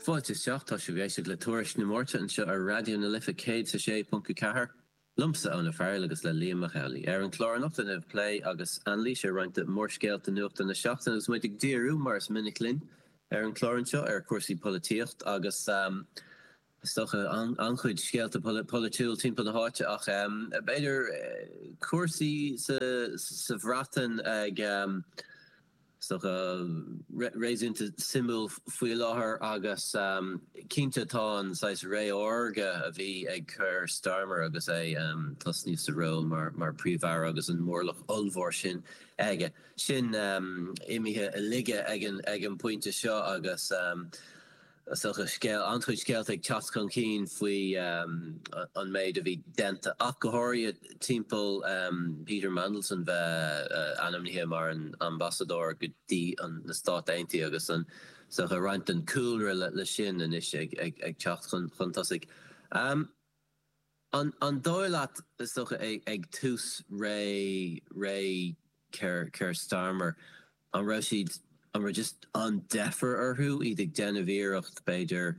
Fáilte isteach, tá sibh ag éisteacht le Tuairisc na Máirte anseo ar Raidió na Life 106.4, liomsa Eoin Ó Fearghail agus le Liam Mac Amhlaigh. Ar an chlár anocht, plé agus anailís ar roinnt de mhórscéalta nuachta na seachtaine agus muid ag díriú, mar is minic linn ar an chlár anseo, ar chúrsaí polaitíochta agus. is dócha, an-chuid scéalta polaitiúil timpeall na háite ach b'fhéidir cúrsaí sa Bhreatain ag, is dócha, réasúnta suimiúil faoi láthair agus cinnte tá an saghas ré órga a bhí ag Keir Starmer agus é ag tosnú sa ról mar Phríomh-Aire agus an mórlach ollmhór sin aige, sin imithe i laige ag an bpointe seo agus. Is dócha, scéal, an-chuid scéalta ag teacht chun cinn faoi an méid a bhí déanta ach go háirithe timpeall Peter Mandelson bheith ainmnithe mar an ambasadóir go dtí na Stáit Aontaithe agus is dócha roinnt den chúlra leis sin anois ag teacht chun tosaigh. An dóigh leat, is dócha, ag tús ré ré Keir Starmer, an raibh siad, an raibh just an-deifir orthu, iad ag déanamh iarracht, b'fhéidir,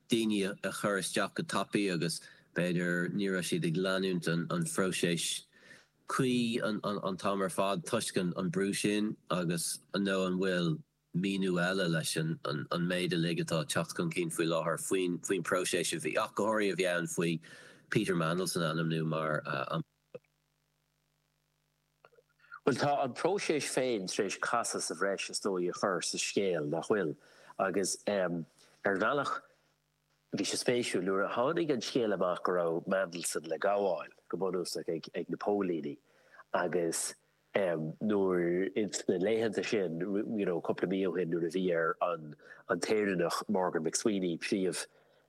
daoine a chur isteach go tapaidh agus, b'fhéidir, ní raibh siad ag leanúint an phróiseas cuí an t-am ar fad toisc an brú sin agus, nó an bhfuil, míniú eile leis an méid uilig atá ag teacht chun cinn faoi láthair faoin próiseas a bhí, ach go háirithe a bhí ann faoi Peter Mandelson a ainmniú mar an. Bhuel, tá an próiseas féin tar éis casadh sa bhreis, is dóigh, a chur sa scéal, nach bhfuil? Agus ar bhealach Bhí sé spéisiúil, nuair a tháinig an scéal amach go raibh Mandelson le gabháil, go bunúsach, ag na póilíní agus nuair, insna laethanta sin, you know, cúpla mí ó shin, nuair a bhí ar an, an tÉireannach, Morgan McSweeney,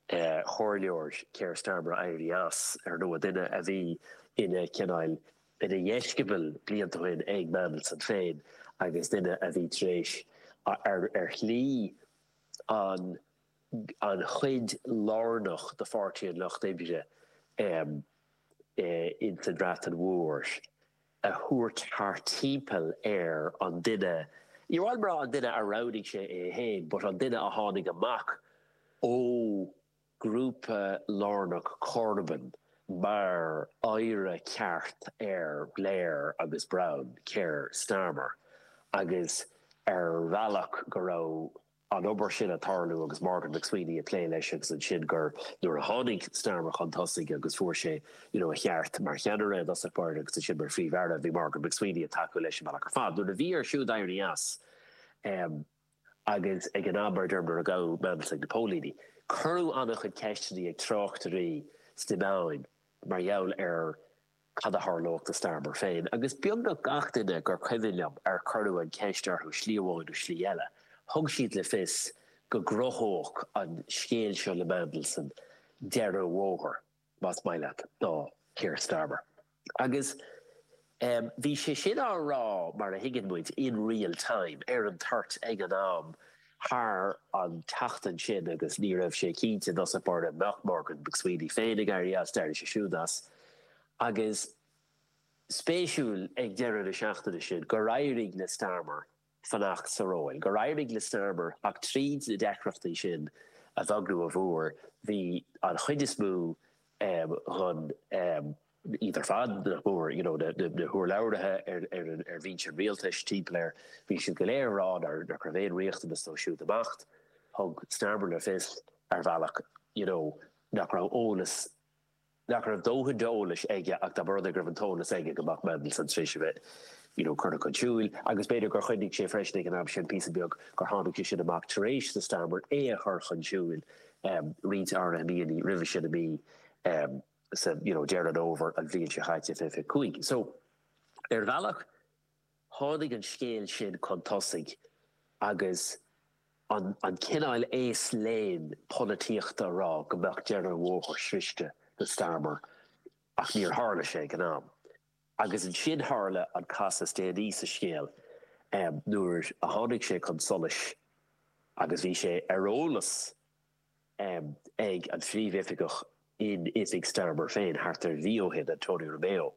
príomhchomhairleoir Keir Starmer éirí as, ar ndóigh, duine a bhí ina cineál, ina dheisceabal blianta ó shin ag Mandelson féin agus duine a bhí tar éis, ar shlí, an. an chuid lárnach de Pháirtí an Lucht Oibre insan Bhreatain Mhór, a thabhairt thart timpeall ar an duine, níor mhaith liom a rá an duine a roghnaigh sé é fhéin, but an duine a tháinig amach ó ghrúpa lárnach Corbyn mar oidhre ceart ar Blair agus Brown, Keir Starmer, agus ar bhealach go raibh. an obair sin ag tarlú agus Morgan McSweeney ag plé leis agus ansin gur, nuair a tháinig Starmer chun tosaigh agus fuair sé you know a sheans mar cheannaire i dtosach báire agus ansin mar Phríomh-Aire, bhí Morgan McSweeney ag tacú leis an mbealach ar fad. Nuair a bhí air siúd éirí as, em, agus ag an am mar a deirim nuair a gabhadh Mandelson ag na póilíní, cuireadh an-chuid ceisteanna ag tráchtairí sna meáin mar gheall ar. cad a tharlódh do Starmer féin, agus beagnach gach duine gur cuimhin liom ar cuireadh an cheist orthu slí amháin nó slí eile, thug siad le fios go gcruthódh an scéal seo le Mandelson deireadh an bhóthair, más maith leat, do Keir Starmer. Agus bhí sé sin á rá, mar a thuigeann muid, in real time, ar an toirt, ag an am, thar an tseachtain sin agus ní raibh sé cinnte, know, seachas, b'fhéidir, nach Morgan McSweeney féin ag éirí as, d'éirigh sé siúd as. Agus is spéisiúil ag deireadh na seachtaine sin gur éirigh le Starmer fanacht sa ról, gur éirigh le Starmer theacht tríd na deacrachtaí sin a bheag nó a mhór, bhí an chuid is mó den iad ar fad, nach mór, you know, na húrlabhraithe ar bhinse an rialtais timpeall air, bhí siad go léir ag rá nár raibh aon riachtanas dó siúd imeacht. Thug Starmer le fios, ar bhealach, you know, nach raibh eolas, nach raibh dóthain d'eolas aige ach dá mba rud é go raibh an t-eolas aige go mbeadh Mandelson tar éis a bheith, you know, curtha chun siúil. Agus b'fhéidir gur chuimhnigh sé freisin ag an am sin, píosa beag, gur tháinig sé sin amach tar éis do Starmer é a chur chun siúil roinnt áirithe míonna roimhe sin i mí. nó Deireadh Fómhair an bhliain seo chaite, fiche fiche cúig. So, ar bhealach, tháinig an scéal sin chun tosaigh agus an cineál aos léinn polaitíochta a rá go mbeadh deireadh an bhóthair sroichte do Starmer, ach níor tharla sé ag an am. Agus ansin tharla an casadh is déanaí sa scéal nuair a tháinig sé chun solais, agus bhí sé ar eolas ag an phríomhoifigeach in oifig Starmer féin thart ar mhí ó shin, Antonia Romeo,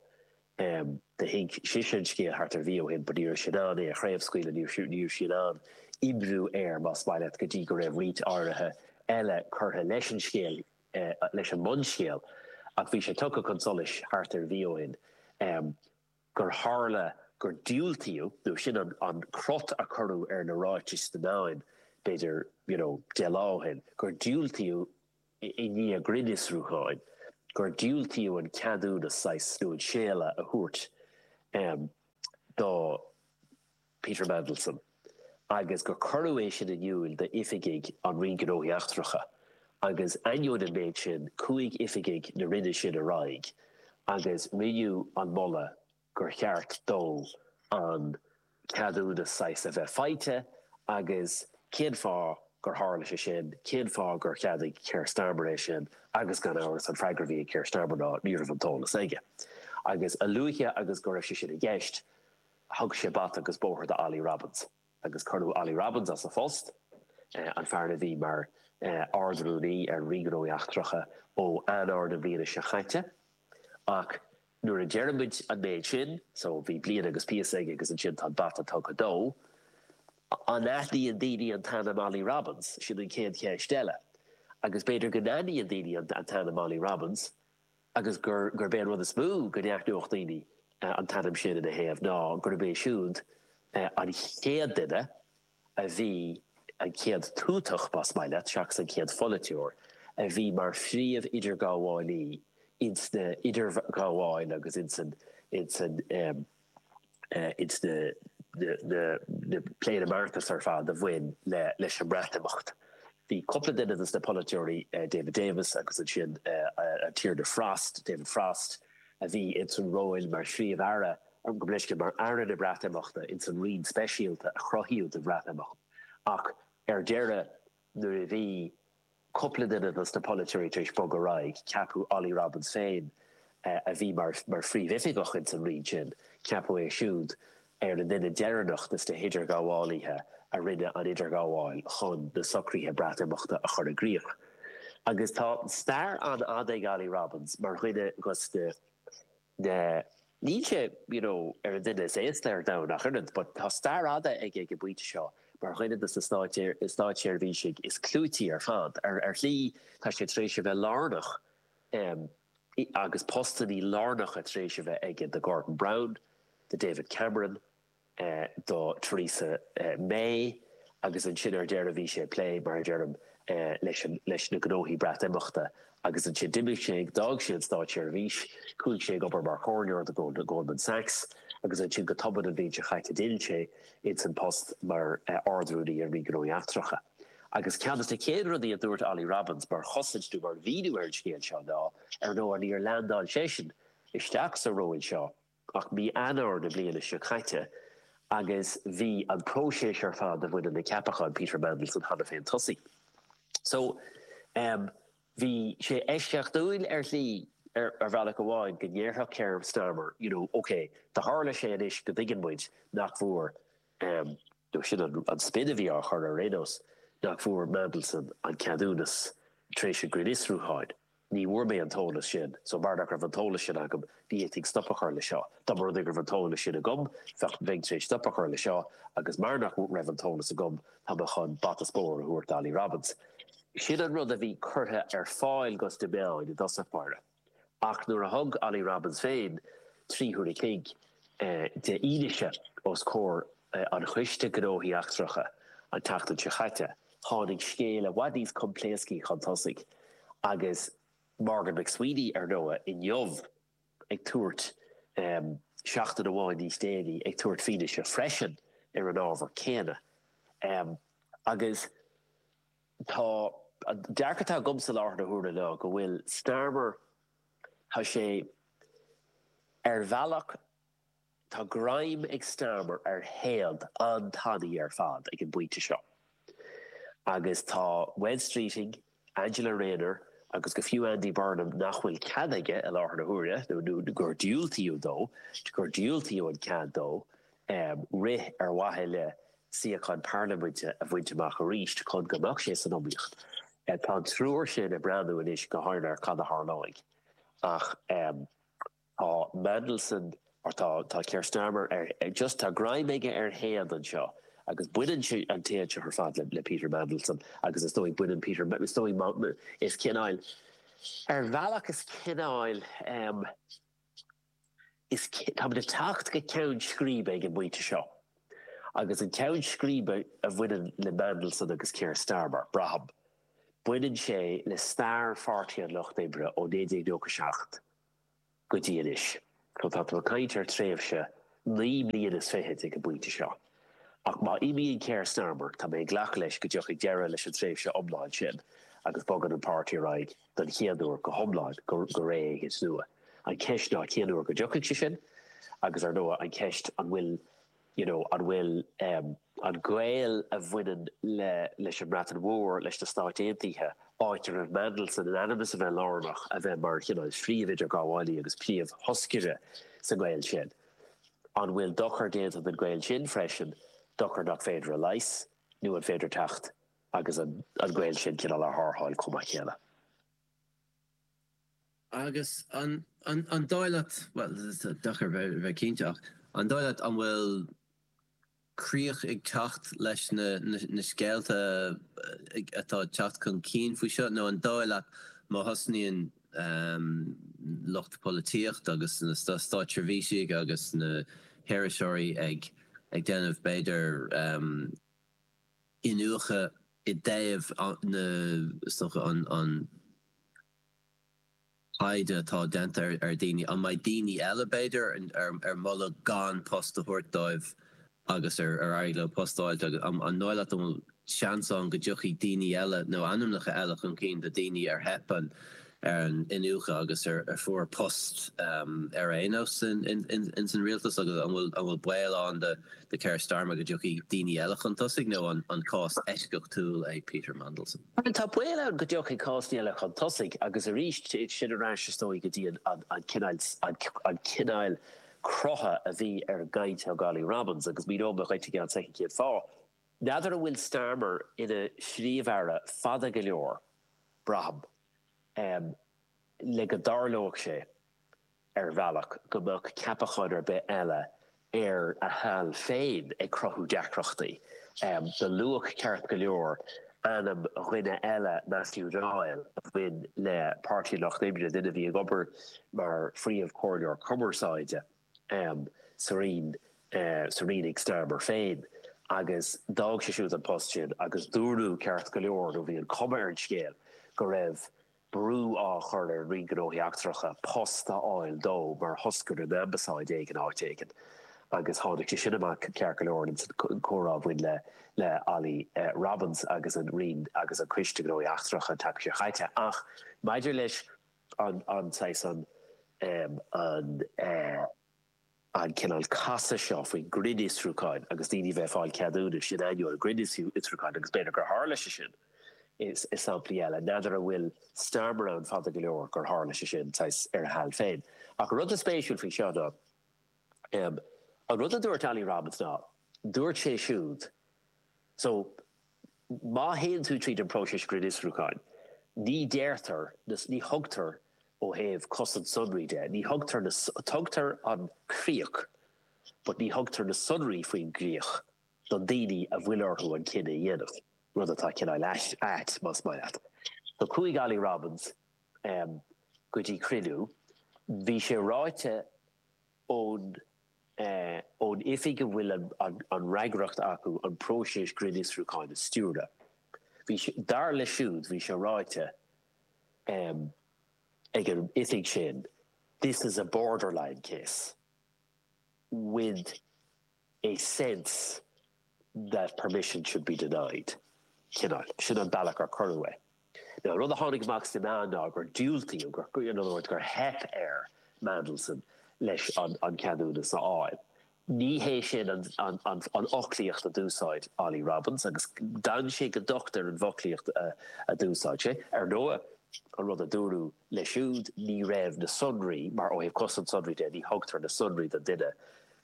thuig sise an scéal thart ar mhí ó shin but ní raibh sí in ann é a chraobhscaoileadh, ní raibh sí in ann oibriú air, más maith leat, go dtí go raibh roinnt áirithe eile curtha leis an scéal, leis an mbunscéal. Ach bhí sé tugtha chun solais thart ar mhí ó shin. gur tharla gur diúltaíodh, nó sin an crot a cuireadh ar na ráitis sna meáin, b'fhéidir, you know, deich lá ó shin, gur diúltaíodh i ndiaidh grinnfhiosrúcháin, gur diúltaíodh an ceadúnas saghas nó an séala a thabhairt do, Peter Mandelson, agus gur cuireadh é sin in iúil d'oifigigh sa Roinn Gnóthaí Eachtracha, agus ainneoin an méid sin, chuaigh oifigigh na Roinne sin ar aghaidh agus rinneadh an moladh gur cheart dó an ceadúnas saghas a bheith faighte, agus cén fáth gur tharla sé sin, cén fáth gur cheadaigh Keir Starmer é sin, agus gan amhras, an freagra a bhí ag Keir Starmer ná ní raibh an t-eolas aige. Agus a luaithe agus a raibh sé sin i gceist, thug sé bata agus bóthar do Ollie Robbins agus cuireadh Ollie Robbins as a phost, an fear a bhí mar Ard-Rúnaí ar an Roinn Gnóthaí Eachtracha ó Eanáir na bliana seo chaite. Ach nuair a deir muid an méid sin, so bhí bliain agus píosa aige agus ansin tá an bata tugtha dó, an aithníonn daoine an t-ainm Ollie Robbins? Sin an chéad cheist eile. Agus b'fhéidir go n-aithníonn daoine an t-ainm Ollie Robbins, agus gurb é an rud is mó go n-aithneodh daoine an t-ainm sin ina thaobh ná gurb é siúd an chéad duine a bhí, an chéad tuatach, más maith leat, seachas an chéad pholaiteoir, a bhí mar phríomh-idirghabhálaí ins na, idirghabháil, agus ins an, ins an. ins na plé agus na mbeartas ar fad a bhain leis an mBreatimeacht. Bhí cúpla duine des na polaiteoirí, David Davis agus ansin an Tiarna Frost, David Frost, a bhí ins an ról mar Phríomh-Aire, gabh mo leithscéal mar Aire na Breatimeachta ins an roinn speisialta a cruthaíodh don Bhreatimeacht, ach ar deireadh Nuair a bhí cúpla duine des na polaiteoirí tar éis bogadh ar aghaidh, ceapadh Ollie Robbins féin, a bhí mar phríomhoifigeach ins an roinn sin, ceapadh é siúd ar an duine deireanach des na hidirghabhálaithe a rinne an idirghabháil chun na socruithe Breatimeachta a chur i gcrích. Agus tá stair an-fhada ag Ollie Robbins mar dhuine des na Now, níl sé, you know, ar an duine is aosta ar domhan ach oiread, ach tá stair fhada aige ag an bpointe seo mar dhuine des na státseirbhísigh is clúití ar fad. Ar shlí, tá sé tar éis a bheith lárnach agus postannaí lárnacha tar éis a bheith aige do Gordon Brown, do David Cameron, do Theresa May agus ansin ar deireadh bhí sé ag plé, mar a deirim, leis na gnóthaí Breatimeachta agus ansin d'imigh sé, d'fhág sé an státseirbhís, chuaigh sé ag obair mar chomhairleoir do Goldman Sachs agus ansin go tobann an bhliain seo chaite d'fhill sé ins an post mar Ard-Rúnaí ar Roinn Gnóthaí Eachtracha. Agus ceann des na chéad rudaí a dúirt Ollie Robbins mar chosaint nó mar mhíniú ar an scéal seo ná, ar ndóigh, níor leandáil seisean isteach sa ról seo ach mí Eanáir na bliana seo caite agus bhí an próiseas ar fad a bhaineann le ceapachán Peter Mandelson cheana féin tosaithe. So, em, bhí sé eisceachtúil ar shlí, ar, ar bhealach amháin, go ndéarfadh Keir Starmer, you know, OK, do tharla sé anois go dtuigeann muid nach bhfuair, em, nó sin an, an spin a bhí á chur air ar aon nós, nach bhfuair Mandelson an ceadúnas tar éis an ghrinnfhiosrúcháin. Ní bhfuair mé an t-eolas sin, so mar nach raibh an t-eolas sin agam, ní fhéadfainn stop a chur leis seo. Dá mba rud é go raibh an t-eolas sin agam, bheadh, bheinn tar éis stop a chur leis seo, agus mar nach raibh an t-eolas agam, tá mé chun bata is bóthar a thabhairt d'Olly Robbins. Sin an rud a bhí curtha ar fáil dos na meáin i dtosach báire, ach nuair a thug Olly Robbins féin trí huaire an chloig de fhianaise os comhair an Choiste Gnóthaí Eachtracha an tseachtain seo chaite, Tháinig scéal i bhfad níos coimpléascaí chun tosaigh agus Morgan McSweeney, ar ndóigh, inniu ag tabhairt, em, seachtain amháin níos déanaí, ag tabhairt fianaise freisin ar an ábhar céanna. Em, agus tá, an dearcadh atá agamsa i láthair na huaire ná go bhfuil Starmer, tá sé, ar bhealach, Tá greim ag Starmer ar théad an-tanaí ar fad ag an bpointe seo agus tá Wes Streeting, Angela Rayner agus go fiú Andy Burnham, nach bhfuil cead aige i láthair na huaire, nó gur diúltaíodh dó, gur diúltaíodh an cead dó rith ar mhaithe le suíochán Parlaiminte a bhaint amach arís chun go mbeadh sé san iomaíocht, tá an triúr sin ag breathnú anois go géar ar cad a tharlóidh ach. Tá Mandelson, or tá, tá Keir Starmer ar, just tá greim aige ar théad anseo agus baineann sé an téad seo ar fad le, le Peter Mandelson agus is dóigh baineann Peter, is dóigh má, is cineáil, ar bhealach is cineáil ehm, is ci, táimid ag teacht go ceann scríbe ag an bpointe seo agus an ceann scríbe a bhaineann le Mandelson agus Keir Starmer, braithim, baineann sé le stair Pháirtí an Lucht Oibre ó 1997. go dtí anois. So tá tú ag caint ar thréimhse naoi mbliain is fichid ag an bpointe seo. Ach má imíonn Keir Starmer, tá mé ag glacadh leis go dtiocfaidh deireadh leis an tréimhse iomlán sin agus bogann an páirtí ar aghaidh don chéad uair go hiomlán go ré éigin nua. An cheist ná cén uair go dtiocfaidh sé sin agus ar ndóigh an cheist an bhfuil you know, an bhfuil an gaol a bhaineann le, leis an mBreatain Mhór, leis na Stáit Aontaithe, áit a raibh Mandelson in ainm is a bheith lárnach, a bheith mar chineál príomh-idirghabhálaí agus príomh-thoscaire sa ngaol sin, an bhfuil dochar déanta don ghaol sin freisin, dochar nach féidir a leigheas, nó an féidir teacht agus an, an gaol sin cineál a tharrtháil chomh maith céanna? Agus an dóigh leat, bhuel, is deacair a bheith cinnte, ach an dóigh leat an bhfuil críoch ag teacht leis na scéalta atá ag teacht chun cinn faoi seo, nó an dóigh leat má thosnaíonn lucht polaitíochta agus na státseirbhísigh agus na hiriseoirí ag déanamh, b'fhéidir, iniúchadh i dtaobh na, is dócha, an caighdeán atá déanta ar dhaoine, an mbeidh daoine eile, b'fhéidir, ar moladh gan post a thabhairt dóibh agus ar éirigh leo post a fháilt, agus an dóigh leat an bhfuil seans ann go dtiocfaidh daoine eile nó ainmneacha eile chun cinn de dhaoine ar theip an ar an iniúchadh agus a fuair post ar aon nós ins an rialtas agus an bhfuil baol ann do Keir Starmer go dtiocfaidh daoine eile chun tosaigh nó an cás eisceachtúil é Peter Mandelson? Bhuel, tá baol ann go dtiocfaidh cásanna eile chun tosaigh agus arís sin ar ais is dócha go dtí an cineáil crutha a bhí ar an gcaint ó Olly Robbins agus míneoidh mé dhuit i gceann soicind cén fáth N'fheadar an bhfuil Starmer ina Phríomh-Aire fada go leor, braithim, le go dtarlódh sé, ar bhealach, go mbeadh ceapachán ar bith eile ar a sheal féin ag cruthú deacrachtaí dó. Luadh ceart go leor ainm duine eile, Matthew Doyle, a bhain le Páirtí an Lucht Oibre, duine a bhí ag obair mar Phríomh-Chomhairleoir Cumarsáide. am sa Rinn, sa Rinn ag Starmer féin, agus d'fhág sé siúd an post sin agus dúradh ceart go leor, nó bhí an chuma ar an scéal, go raibh brú á chur ar an Roinn Gnóthaí Eachtracha post a fháil dó mar thoscaire in ambasáid éigin áit éigin. Agus tháinig sé sin amach ceart go leor ins an comhrá a bhain le Olly Robbins agus an Roinn agus an Coiste Gnóthaí Eachtracha an tseachtain seo chaite ach maidir leis an saghas, an an cineál casadh seo faoin ngrinnfhiosrúchán agus daoine bheith ag fáil ceadúnais in ainneoin an ghrinnfhiosrúcháin agus b'fhéidir gur tharla sé sin i samplaí eile. N'fheadar an bhfuil Starmer ann fada go leor gur tharla sé sin, saghas, ar a sheal féin. Ach an rud is spéisiúil faoi seo ná. An rud a dúirt Olly Robbins ná, dúirt sé siúd, so, má théann tú tríd an bpróiseas grinnfhiosrúcháin, ní deirtear, ní thugtar ó thaobh cosaint sonraí de, ní thugtar na, tugtar an críoch, but ní thugtar na sonraí faoin gcríoch do na daoine a bhfuil orthu an cinneadh a dhéanamh, rud atá cineáil ait, más maith leat. So chuaigh Olly Robbins go dtí cruinniú, bhí sé ráite ón oifig a bhfuil an fhreagracht acu an próiseas grinnfhiosrúcháin a stiúradh. Bhí sé, dar leis siúd, bhí sé ráite ag an oifig sin, 'this is a borderline case with. a sense that permission should be denied cineál, sin an bealach ar cuireadh é. Now, an rud a tháinig amach sna meáin ná gur diúltaíodh, gur, in other words, gur theip ar Mandelson leis an cheadúnas a fháil. Ní hé sin an fhoclaíocht a d'úsáid Olly Robbins agus d'fhan sé go docht ar an bhfoclaíocht a d'úsáid sé. Ar ndóigh, an rud a dúradh leis siúd, ní raibh na sonraí, mar ó thaobh cosaint sonraí de, ní thugtar na sonraí don duine,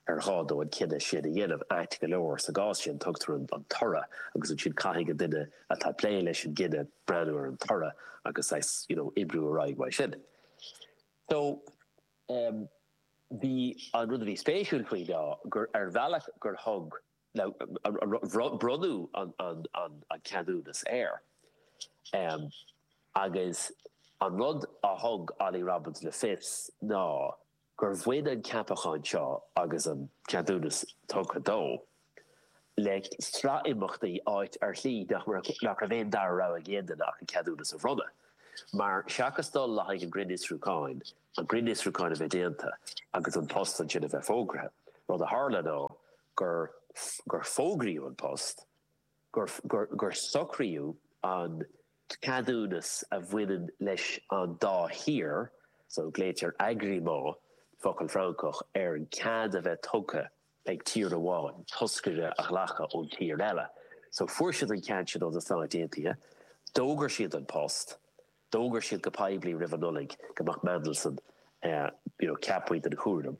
ar ghá dó an cinneadh sin a dhéanamh. Ait go leor, sa gcás sin, tugtar an toradh agus ansin caithfidh an duine atá ag plé leis an gcinneadh breathnú ar an toradh agus saghas, you know, oibriú ar aghaidh mar sin. So, em, bhí an rud a bhí spéisiúil faoi ná gur, ar bhealach, gur thug na, bhronn, bronnadh an, an, an, an ceadúnas air. Em, agus an rud a thug Olly Robbins le fios ná, gur bhain an ceapachán seo, agus an ceadúnas tugtha dó, le sraith imeachtaí, áit ar shlí nach raibh aon dara rogha ag aon duine ach an ceadúnas a bhronnadh, mar seachas dul le haghaidh an ghrinnfhiosrúcháin, an grinnfhiosrúchán a bheith déanta agus an post ansin a bheith fógraithe, rud a tharla ná gur fógraíodh an post. gur socraíodh an ceadúnas a bhaineann leis an dá thír, so, glaoitear agrément, focal Francach ar an cead a bheith tugtha ag tír amháin toscaire a ghlacadh ón tír eile, so fuair siad an cead sin ó na Stáit Aontaithe, d'fhógair siad an post, D'fhógair siad go poiblí roimh an Nollaig go mbeadh Mandelson you know ceapaithe don chúram.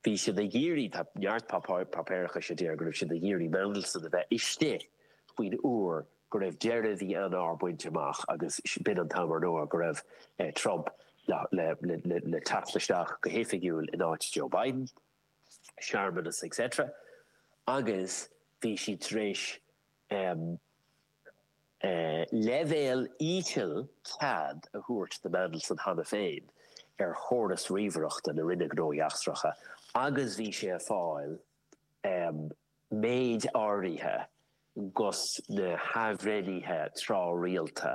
Bhí siad ag iarraidh, tá neart páipéarachais a deir go raibh siad ag iarraidh Mandelson a bheith istigh faoin uair go raibh deireadh mhí Eanáir bainte amach agus b'in an t-am ar ndóigh go raibh Trump le teacht isteach go hoifigiúil in áit Joe Biden, searmanas etc. Agus bhí siad tar éis. leibhéal íseal cead a thabhairt do Mandelson cheana féin ar chóras ríomhaireachta na Roinne Gnóthaí Eachtracha agus bhí sé ag fáil méid áirithe dos na hathbhreithnithe tráthrialta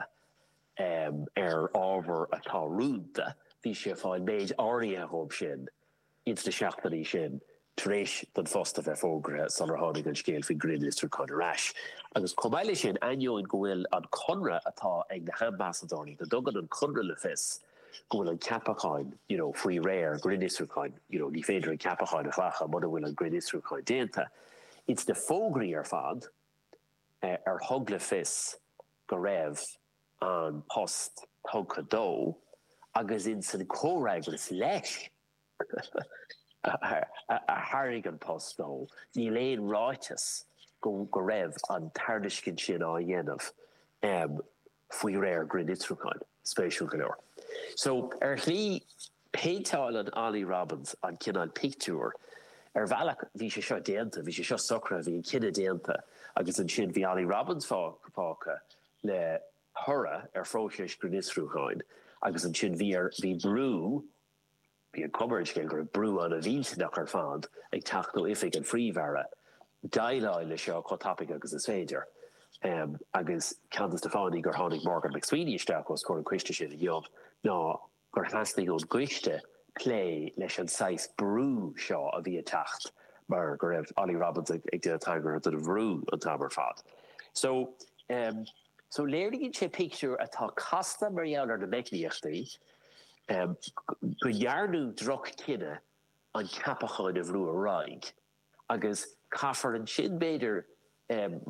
ar ábhar atá rúnda, bhí sé ag fáil méid áirithe díobh sin ins na seachtainí sin tar éis don phost a bheith fógraithe sular tháinig an scéal faoin grinnfhiosrúchán ar ais. Agus chomh maith le sin, ainneoin go bhfuil an conradh atá ag na hambasadóirí, go dtugann an conradh le fios go bhfuil an ceapachán, you know, faoi réir grinnfhiosrúcháin, you know, ní féidir an ceapachán a ghlacadh muna bhfuil an grinnfhiosrúchán déanta, ins na fógraí ar fad ar thug le fios go raibh. an post tugtha dó agus ins an comhfhreagras leis a thairg an post dó níl aon ráiteas go raibh an tairiscint sin á dhéanamh faoi réir grinnfhiosrúcháin. Spéisiúil go leor. So, ar shlí, péinteáileann Ollie Robins an cineál pictiúir, ar bhealach bhí sé seo déanta, bhí sé seo socraithe, bhí an cinneadh déanta agus ansin bhí Ollie Robins fágtha le toradh ar phróiseas grinnfhiosrúcháin agus ansin bhí ar, bhí brú, bhí an chuma ar an scéal go raibh brú an-mhillteanach ar fad ag teacht ó Oifig an Phríomh-Aire déileáil leis seo chomh tapaidh agus is féidir. Agus ceann de na fáthanna gur tháinig Morgan McSweeney isteach os comhair an coiste sin inniu ná, gur theastaigh ón gcoiste plé leis an saghas brú seo a bhí ag teacht mar go raibh Ollie Robins ag déanamh tagartha don bhrú an t-am ar fad. So, em, so léiríonn sé pictiúr atá casta mar gheall ar na meicníochtaí, em, go ndearnadh droch-chinneadh an ceapachán a bhrú ar aghaidh. agus caithfear ansin, b'fhéidir,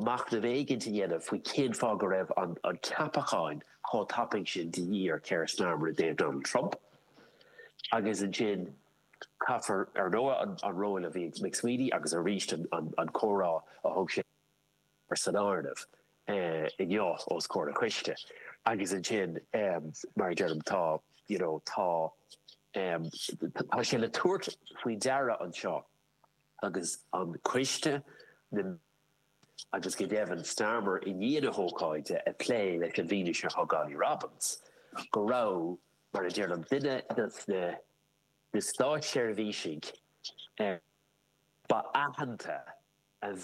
machnamh éigin a dhéanamh faoi cén fáth go raibh an ceapachán chomh tapaidh sin de dhíth ar Keir Starmer i dtaobh Donald Trump, agus ansin caithfear, ar ndóigh, an ról a bhí ag McSweeney agus arís an comhrá a thug sé. san áireamh, inniu os comhair an choiste. Agus ansin, mar a deirim, tá, you know, tá, tá sé le tabhairt faoi deara anseo agus an coiste, na, agus go deimhin Starmer i ndiaidh na hócáide ag plé leis an bhfianaise a thug Ollie Robins, go raibh, mar a deirim, duine dos na státseirbhísigh ba aitheanta an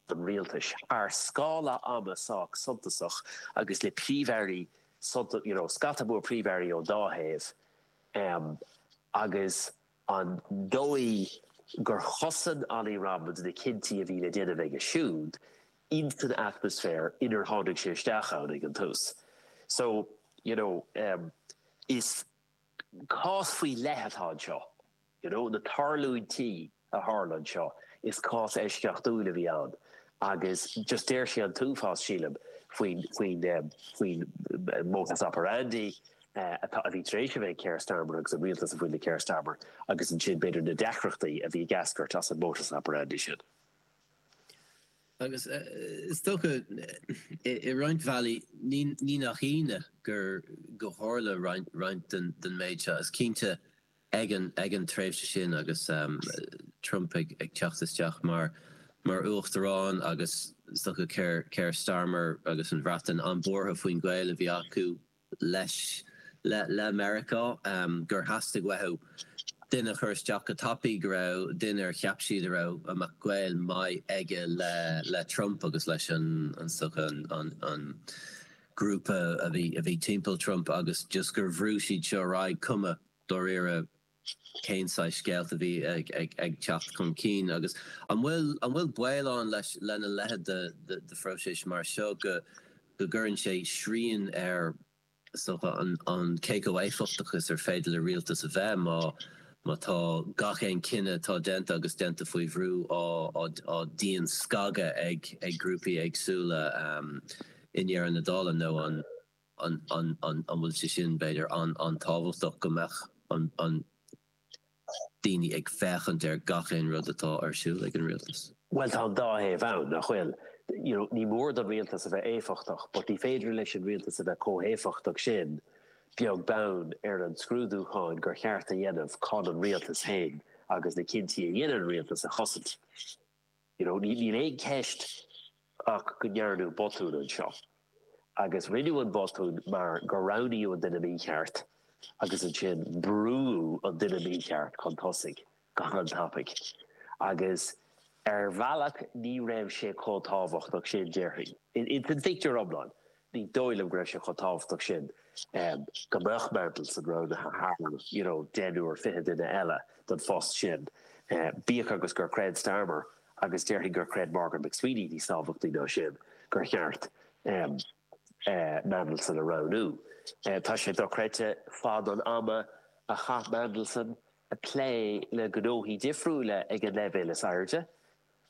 rialtais, thar scála ama sách suntasach agus le príomh-airí, you know scata mór príomh-airí ón dá thaobh, agus an dóigh gur chosain Ollie Robins na cinntí a bhí le déanamh aige siúd ins an atmaisféar inar tháinig sé isteach ann ag an tús. So, you know, is cás faoi leith atá anseo. You know, na tarlúintí a tharla anseo, is cás eisceachtúil a bhí ann agus just deir sé an t-uafás, sílim, faoin, faoin, faoin modus operandi atá, a bhí tar éis a bheith ag Keir Starmer agus an rialtas a bhain le Keir Starmer agus ansin, b'fhéidir, na deacrachtaí a bhí ag eascairt as an modus operandi sin. Agus is dócha, i roinnt bhealaí, ní, ní nach ionadh gur, gur tharla roinnt, roinnt den, den méid seo. Is cinnte. ag an, ag an tréimhse sin agus Trump ag teacht isteach mar uachtarán agus is dócha Keir Starmer agus an Bhreatain an-buartha faoin ghaol a bhí acu leis, le Meiriceá gur theastaigh uathu duine a chur isteach go tapaidh go raibh, duine ar cheap siad a raibh a mbeadh gaol maith aige le Trump agus leis an is dócha an grúpa a bhí timpeall Trump agus just gur bhrú siad seo ar aghaidh cuma. dáiríre cén saghas scéalta a bhí ag teacht chun cinn agus an bhfuil baol ann lena leithéid de phróiseas mar seo go gcuireann sé srian ar an cé chomh éifeachtach is ar féidir le rialtas a bheith má tá gach aon chinneadh atá déanta agus déanta faoi bhrú á dianscagadh ag grúpaí éagsúla i ndeireadh na dála nó an an bhfuil sé sin, b'fhéidir, an-tábhachtach go mbeadh daoine ag féachaint ar gach aon rud atá ar siúl ag an rialtas? Bhuel, tá an dá thaobh ann, nach bhfuil? You know, ní mór don rialtas a bheith éifeachtach but ní féidir leis an rialtas a bheith chomh héifeachtach sin, beag beann ar an scrúdúchán gur cheart a dhéanamh chun an rialtas féin agus na cinntí a dhéanann an rialtas a chosaint. You know, níl aon cheist ach go ndearnadh botún anseo. Agus rinneadh an botún mar gur roghnaíodh an duine mícheart agus ansin brúdh an duine mícheart chun tosaigh go han-tapaidh. Agus ar bhealach ní raibh sé chomh tábhachtach sin, déarfainn. Insan phictiúr iomlán. ní dóigh liom go raibh sé chomh tábhachtach sin go mbeadh Mandelson roghnaithe thar, you know, deichniúr, fiche duine eile don phost sin, bíodh agus gur chreid Starmer, agus déarfainn gur chreid Morgan McSweeney níos tábhachtaí ná sin, gur cheart Mandelson a roghnú. Tá sé dochreidte fad an ama a chaith Mandelson ag plé le gnóthaí difriúla ag an leibhéal is airde,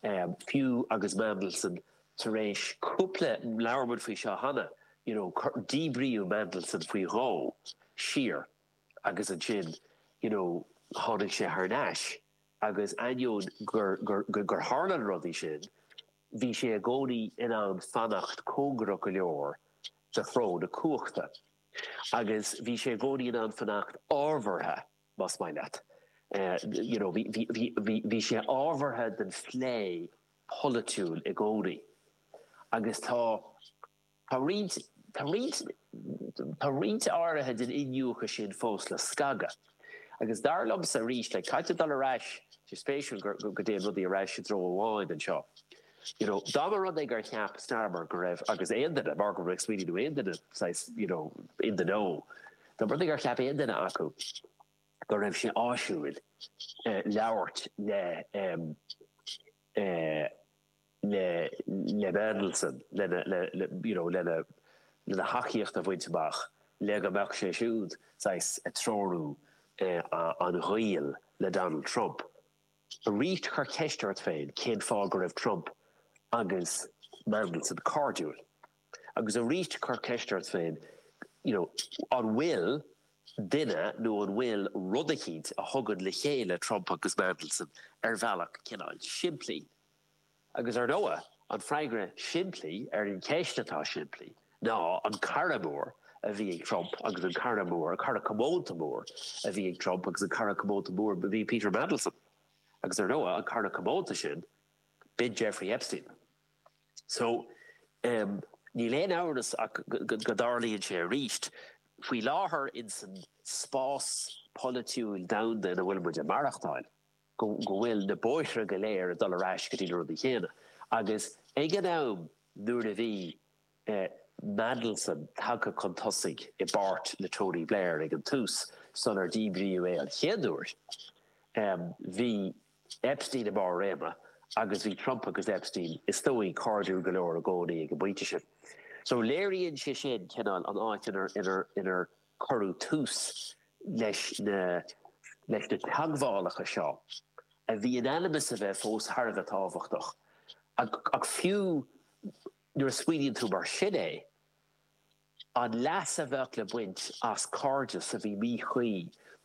fiú agus Mandelson tar éis cúpla, labhair muid faoi seo cheana, you know, díbríodh Mandelson faoi dhó siar agus ansin, you know, tháinig sé thar n-ais agus ainneoin gur, gur, gur tharla na rudaí sin, bhí sé i gcónaí in ann fanacht cóngarach go leor do chró na cumhachta agus bhí sé i gcónaí in ann fanacht ábhartha. más maith leat. You know, bhí, bhí, bhí, bhí, bhí sé ábhartha don phlé polaitiúil i gcónaí agus tá, tá roinnt, tá roinnt, tá roinnt áirithe den iniúchadh sin fós le scagadh. Agus dar liomsa arís, like, caithfidh tú dul ar ais, tá sé spéisiúil go, go dtéann rudaí ar ais i dtreo amháin anseo. You know, dá mba rud é gur cheap Starmer go raibh, agus aon duine, Morgan McSweeney nó aon duine saghas, you know, in the know, dá mba rud é gur cheap aon duine acu go raibh sé áisiúil labhairt le, le, le Mandelson, lena, le, le, you know, lena, lena thacaíocht a bhaint amach, le go mbeadh sé siúd saghas ag treorú an ghaoil le Donald Trump, Aríst cuir ceist ort féin cén fáth go raibh Trump agus Mandelson cairdiúil. Agus aríst cuir ceist ort féin you know an bhfuil duine nó an bhfuil rud eicínt a thugann le chéile Trump agus Mandelson ar bhealach cineál simplí. Agus ar ndóigh, an freagra simplí ar an cheist atá simplí ná an cara mór a bhí ag Trump agus an cara mór, cara comónta mór, a bhí ag Trump agus an cara comónta mór a bhí ag Peter Mandelson. Agus ar ndóigh, an cara comónta sin, b'in Jeffrey Epstein. So, níl aon amhras ach go dtarlaíonn sé arís. Faoi láthair, insan spás polaitiúil domhanda ina bhfuil muid ag maireachtáil, go bhfuil na bóithre go léir ag dul ar ais go dtí na rudaí céanna. Agus ag an am nuair a bhí Mandelson tagtha chun tosaigh i bpáirt le Tony Blair ag an tús, sular díbríodh é an chéad uair, bhí Epstein i mbarr réime agus bhí Trump agus Epstein, is dóigh, cairdiúil go leor i gcónaí ag an bpointe sin. So léiríonn sé sin cineál an áit inar Cuireadh tús leis na leis na teagmhálacha seo, a bhí in ainm is a bheith fós thar a bheith tábhachtach, ach fiú nuair a smaoiníonn tú mar sin é, an leas a bheadh le baint as cairdeas a bhí míchuí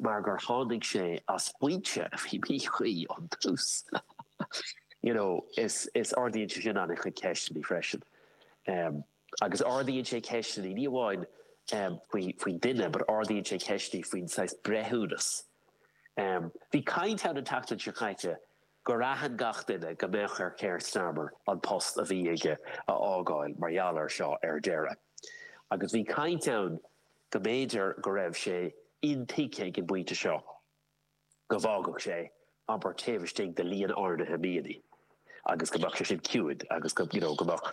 mar gur tháinig sé as foinse a bhí míchuí ón tús, you know, is, is ardaíonn sé sin an-chuid ceisteanna freisin. Agus ardaíonn sé ceisteanna, ní amháin faoin duine, but ardaíonn sé ceisteanna faoin saghas breithiúnas. Bhí caint ann an tseachtain seo caite gur aithin gach duine go mbeadh ar Keir Starmer an post a bhí aige a fhágáil mar gheall air seo ar deireadh. Agus bhí caint ann go mb'fhéidir go raibh sé intuigthe ag an bpointe seo. go bhfágfadh sé obair taobh istigh de líon áirithe míonnaí agus go mbeadh sé sin ciúin agus go, you know, go mbeadh,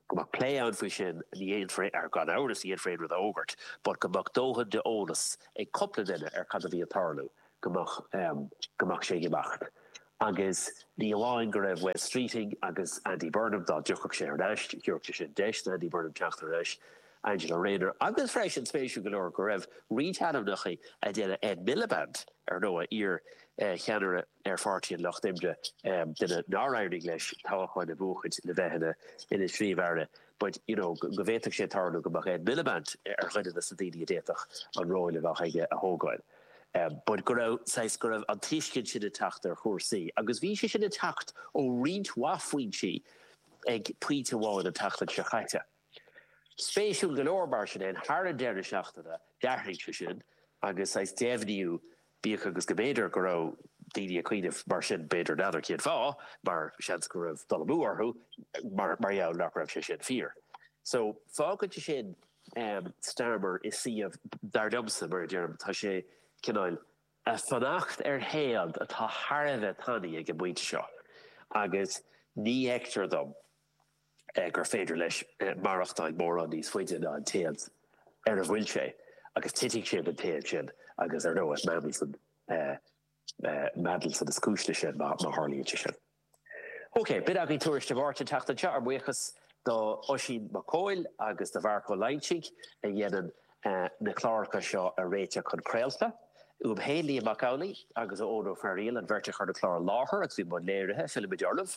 go mbeadh plé ann faoi sin, ní dhéanfar, ar, gan amhras, ní dhéanfar aon rud a fhógairt but go mbeadh dóthain de eolas ag cupla duine ar cad a bhí ag tarlú, go mbeadh, em, go mbeadh sé ag imeacht. Agus ní amháin go raibh Wes Streeting agus Andy Burnham, dá dtiocfadh sé thar n-ais, thiúrfadh sé sin deis d'Andy Burnham teacht thar n-ais, Angela Rayner, agus freisin, spéisiúil go leor, go raibh roinnt ainmneacha a deineadh Ed Miliband, ar ndóigh, iar-cheannaire ar Pháirtí an Lucht Oibre, duine nár éirigh leis toghchán a bhuachaint le bheith ina Phríomh-Aire, but, you know, go bhféadfadh sé tarlú go mbeadh Ed Miliband ar dhuine de na daoine a d'fhéadfadh an ról a bheadh aige a thógáil. But go raibh, saghas, go raibh an tuiscint sin ag teacht ar chúrsaí, agus bhí sé sin ag teacht ó roinnt mhaith foinsí ag pointe amháin an tseachtain seo chaite. Spéisiúil go leor, mar sin fhéin, thar an deireadh seachtaine, d'athraigh sé sin, agus saghas deimhníú, bíodh agus go mb'fhéidir go raibh daoine ag cuimhneamh mar sin, b'fhéidir, n'fheadar cén fáth, mar seans go raibh dul amú orthu, mar gheall nach raibh sé sin fíor. So, fágann sé sin Starmer i suíomh, dar liomsa, mar a deirim, tá sé, cineál, a' fanacht ar théad atá thar a bheith tanaí ag an bpointe seo, agus ní fheictear dom, gur féidir leis maireachtáil mórán níos faide ná an téad ar a bhfuil sé, agus titfidh sé den téad sin, agus ar ndóigh, Mandelson, Mandelson is cúis leis sin, má tharlaíonn sé sin. OK, b'in againn Tuairisc Dé Máirt an tseachtain seo, ár mbuíochas do Oisín Mac Cóil agus do Mharc Ó Loingsigh a dhéanann na cláracha seo a réiteach chun craolta, uaim féin, Liam Mac Amhlaigh, agus ó Eoin Ó Fearaíl, an bheirt a chuir na cláir i láthair agus bhí i mbun léirithe, fillfimid oraibh!